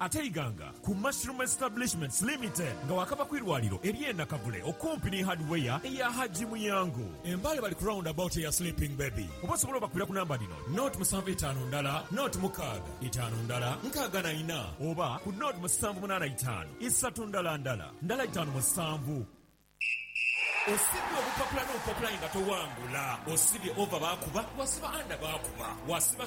Ate Iganga ku Mushroom Establishments Limited nga waakava ku irwaliro ery'e Nakavule okumpi ni Hardware eya Hajji Muyango e Mbale bali ku round about eya Sleeping Baby oba osobola obakubira ku namba dhino, nought musanvu itaanu ndala nought mukaaga itaanu ndala nkaaga na ina oba ku nought musanvu munaana itaanu isatu ndala ndala ndala itaanu musanvu. Osimbye obupapula n'obupapula aye nga towangula, osibye over baakuba, wasiba under baakuba, wasiba